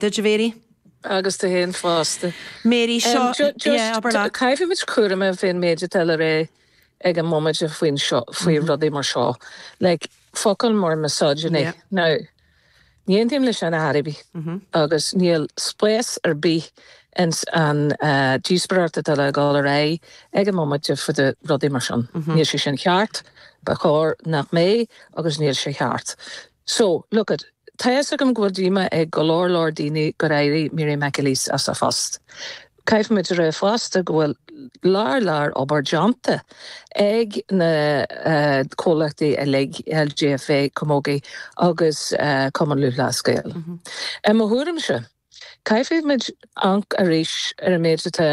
Dia duit Mary. Agus duit fhéin fosta. Mary, seo, yeah, abair leat. Caithfimid cúramach faoin méid atá le rá ag an mbomaite faoin seo, faoi rudaí mar seo. Like, focail mar misogyny. Yeah. Now, ní aontaím le sin ar bith. Agus níl spás ar bith ins an eh, díospoireacht atá le dhul ar aghaidh ag an mbomaite fá dtaobh de rudaí mar sin. Níl sé sin cheart, ba chóir nach mbeidh agus níl sé cheart. So, look it, tá a fhios agam go bhfuil díomá ag go leor leor daoine gur éirigh Mary McAleese as a post. Caithfimid a rá fosta go bhfuil lear lear obair déanta ag na comhlachtaí uilig, LGFA, Camogie agus Cumann Lúthchleas Gael. I mo thuairimse. Caithfidh muid amharc arís ar an méid atá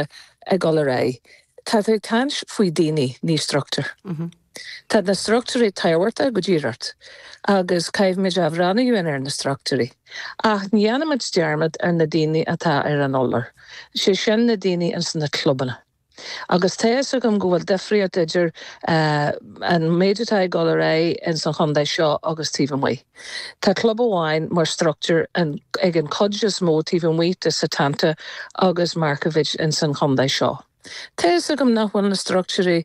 ag dul ar aghaidh. Tá tú ag caint faoi daoine, ní structúir. Tá na structúirí tábhachtach go díreach agus caithfidh muid a bhreathnú ar na structúirí. Ach ní dhéanfaidh muid dearmad ar na daoine atá ar an urlár, sé sin na daoine ins na clubanna. Agus tá a fhios agam go bhfuil difríocht idir an méid atá ag dul ar aghaidh ins an chontae seo agus taobh amuigh. Tá club amháin mar structúr ag an cuid is mó taobh amuigh de Setanta agus Markievicz ins an chontae seo. Tá a fhios agam nach bhfuil na structúirí,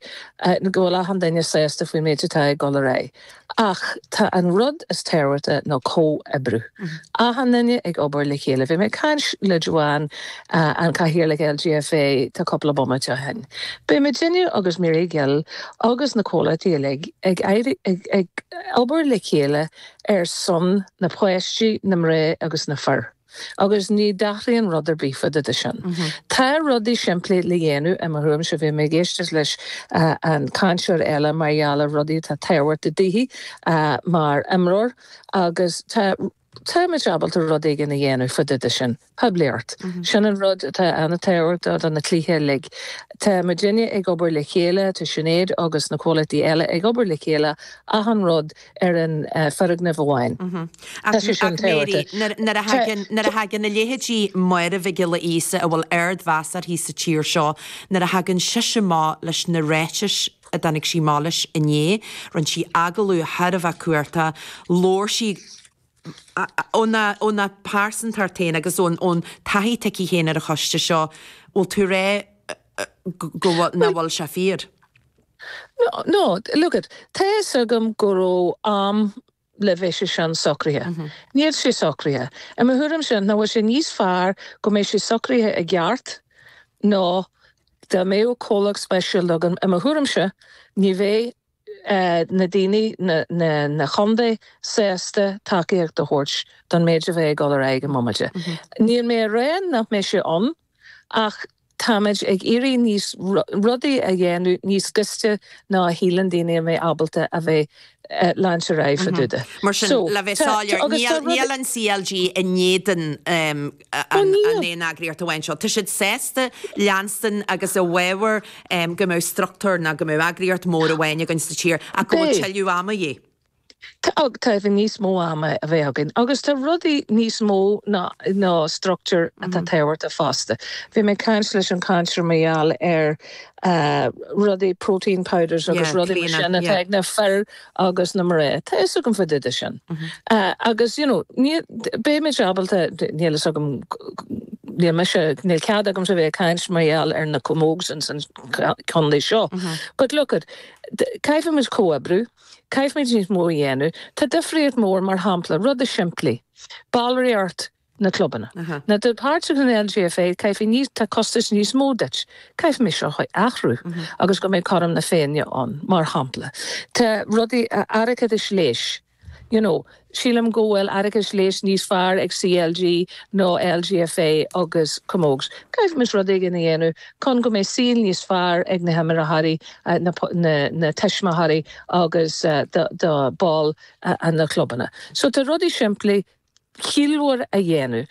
go bhfuil achan duine sásta faoin méid atá ag dul ar aghaidh. Ach tá an rud is tábhachtaí ná comhoibriú. Achan duine ag obair le chéile. Bhí mé ag caint le Joanne, an cathaoirleach LGFA, tá cúpla bomaite ó shin. Beidh muidinne agus Mary Gill agus na comhlachtaí uilig ag éirí, ag, ag obair le chéile ar son na páistí, na mná agus na fir. Agus ní athraíonn rud ar bith fá dtaobh de sin. Tá rudaí simplí le dhéanamh, i mo thuairimse. Bhí mé ag éisteacht leis an cainteoir eile mar gheall ar rudaí atá tábhachtach daoithi mar imreoir agus tá, tá muid ábalta rud éigin a dhéanamh fá dtaobh de sin. Poiblíocht. Sin an rud atá an-tábhachtach do na cluichí uilig. Tá muidinne ag obair le chéile, tá Sinéad agus na comhlachtaí eile ag obair le chéile, achan rud ar an foirgneamh amháin. Tá sé sin tábhachtach. Nuair a thagann a leithéidí Máire Mhic Giolla Íosa, a bhfuil ardmheas uirthi sa tír seo, nuair a thagann sise amach leis na ráitis a dtáinig sí amach leis inné, rinne sí agallamh thar a bheith cumhachtach, labhair sí. Óna pearsantacht féin agus ón taithí atá aici féin ar an choiste seo, bhfuil tú ag rá go bhfuil, nach bhfuil sé fíor? No, look it, tá a fhios agam go raibh am le bheith sé sin socraithe. Níl sé socraithe. I mo thuairimse, nach bhfuil sé níos fearr go mbeidh sé socraithe i gceart ná dá mbeadh comhlacht speisialta againn? I mo thuairimse, ní bheidh na daoine, na contaetha sásta tacaíocht a thabhairt don méid a bheidh ag dul ar aghaidh i mbomaite. Níl mé a rá nach mbeidh sé ann ach táimid ag iarraidh níos, rudaí a dhéanamh níos gaiste ná a shíleann daoine a mbeidh muid ábalta a bheith leanstan ar aghaidh fá dtaobh de. Mar sin, le bheith soiléir, níl an CLG in éadan. Bunú aon eagraíocht amháin seo. Tá siad sásta leanstan agus i bhfabhar go mbeadh struchtúr nó go mbeadh eagraíocht mhór amháin againn sa tír ach go bhfuil tuilleadh ama de dhíth, níos mó ama a bheith againn agus tá rudaí níos mó ná ná struchtúr atá tábhachtach fosta. Bhí mé ag caint leis an chainteoir mar gheall ar rudaí protein powders agus Yeah, rudaí mar sin atá ag na fir agus na mná. Tá fhios agam fá dtaobh de sin. Agus you know, níl, beidh muid ábalta, níl fhios agam, níl mise, níl cead agamsa a bheith ag caint mar gheall ar na camógs ins an condae seo but look it, caithfidh muid comhoibriú, caithfimid níos mó a dhéanamh. Tá difríocht mór mar shampla, rudaí simplí, ballraíocht na clubanna. Má tá tú páirteach in LGFA, caithfidh níos, tá costas níos mó duit. Caithfidh muid seo a athrú agus go mbeidh cothrom na féinne ann, mar shampla. Tá rudaí, árachas leighis, you know, sílim go bhfuil árachas leighis níos fearr ag CLG ná LGFA agus Camogs. Caithfimid rud éigin a dhéanamh chun go mbeidh saol níos fearr ag na himreoirí, na tuismitheoirí agus do bhaill na clubanna. So tá rudaí simplí ciallmhar a dhéanamh.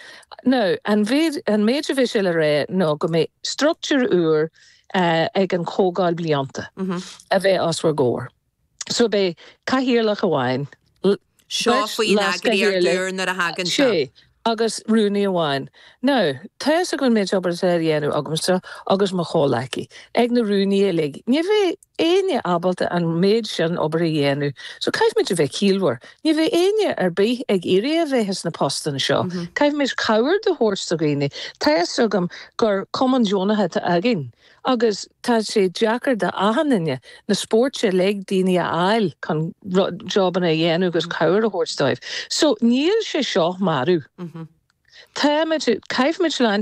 Now, an mhéid, an méid a bheidh sé le rá ná go mbeidh struchtúr úr ag an chomhdháil blianta a bheidh os bhur gcomhair. So beidh cathaoirleach amháin, Seo faoin eagraíocht úr nuair a thagann sé. sé, agus rúnaí amháin. Now, tá fhios agam an méid obair atá le déanamh agamsa agus mo chomhghleacaithe ag na rúnaithe uilig. Ní bheidh éinne ábalta an méid sin obair a dhéanamh so caithfimid a bheith ciallmhar. Ní bheidh aon duine ar bith ag iarraidh a bheith sna postanna seo. Caithfimid cabhair do thabhairt do dhaoine. Tá fhios agam gur cumann deonach atá againn agus tá sé deacair do achan duine, na spóirt uilig, daoine a fháil chun jobanna a dhéanamh agus cabhair a thabhairt dóibh. So níl sé seo marbh. Táimid, caithfimid leanstan.